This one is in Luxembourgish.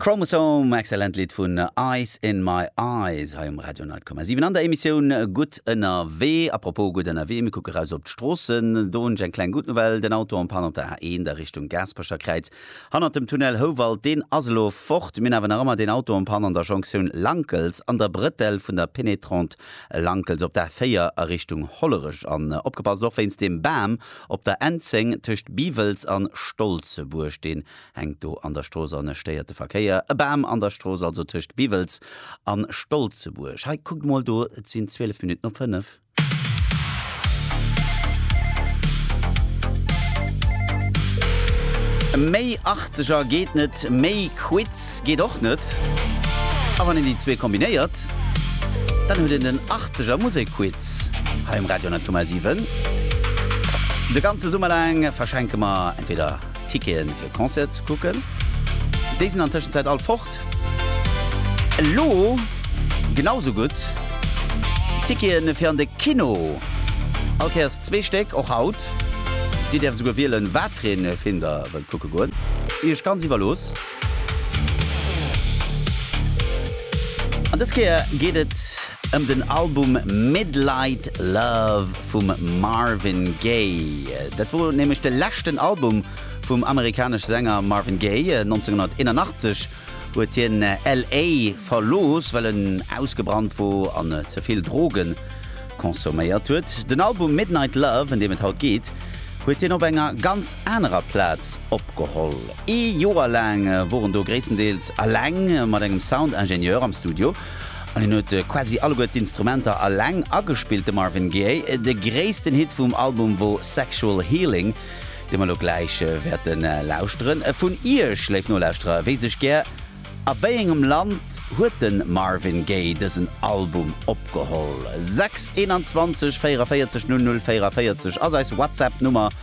Chromosome, excellent Lidd vun Ice in My Eyes hei um Radio 9,7 an der Emissioun Gutt ënnerwee. A propos gutt ënnerwee, mir kucke raus op d'Stroossen. Do hunn ech eng kleng Good Nouvelle, den Auto en panne op der A1 a Richtung Gaasperecher Kräiz hannert dem Tunnel Houwald, deen ass elo fort. Mir hunn awer nach ëmmer den Auto en panne an der Jonktioun Lankels an der Brëtell vun der Pénétrante Lankels op der A4 a Richtung Hollerech. An opgepasst, och wéinst dem Bam Op der N10 tëscht Biwels an Stolzebuerg, deen hänkt do an der Strooss an stéiert de Verkéier, e Bam an der Strooss also tëscht Biwels an Stolzebuerg. Hei, kuckt mol do, et sinn 12 Minutten op 5. Méi Achtzeger geet net, méi Quiz geet och net, a wann een déi zwee kombinéiert, Zäit. Dann huet een den Achtzeger Musekquiz hei um Radio Natur Mal 7. De ganze Summer laang verschenke mer entweder Ticketen fir Concerte ze kucken, déi sinn an Tëschenzäit all fort, elo genau sou gutt Ticketen fir an de Kino, all Kéiers zwee Stéck, och haut. Dir däerft esouguer wielen, wat fir ee Film der wëllt kucke goen, iech ganz iwwerlooss. An dës Kéier geet et ëm den Album Midlight Love vum Marvin Gaye. Dat wor nämlech de leschten Album vum amerikanesch Sänger Marvin Gaye. 1981 huet hien LA verlooss, well en ausgebrannt wor an ze vill Droge consomméiert huet. Den Album Midnight Love, ëm deem et haut geet, huet hien op enger ganz anerer Plaz opgeholl. Ee Joer laang wor en do gréisstendeels eleng mat engem Soundingenieur am Studio an hien huet quasi alleguer d'Instrumenter eleng agespillt. De Marvin Gaye. De gréissten Hit vum Album wor Sexual Healing, dee mer elo gläich wäerte lauschteren. Vun Iech, léif Nolauschterer, wéisst ech gär, A wéiengem Land huet de Marvin Gaye dësen Album opgeholl? 6 21 44 00 44 ass eis WhatsApp-Nummer.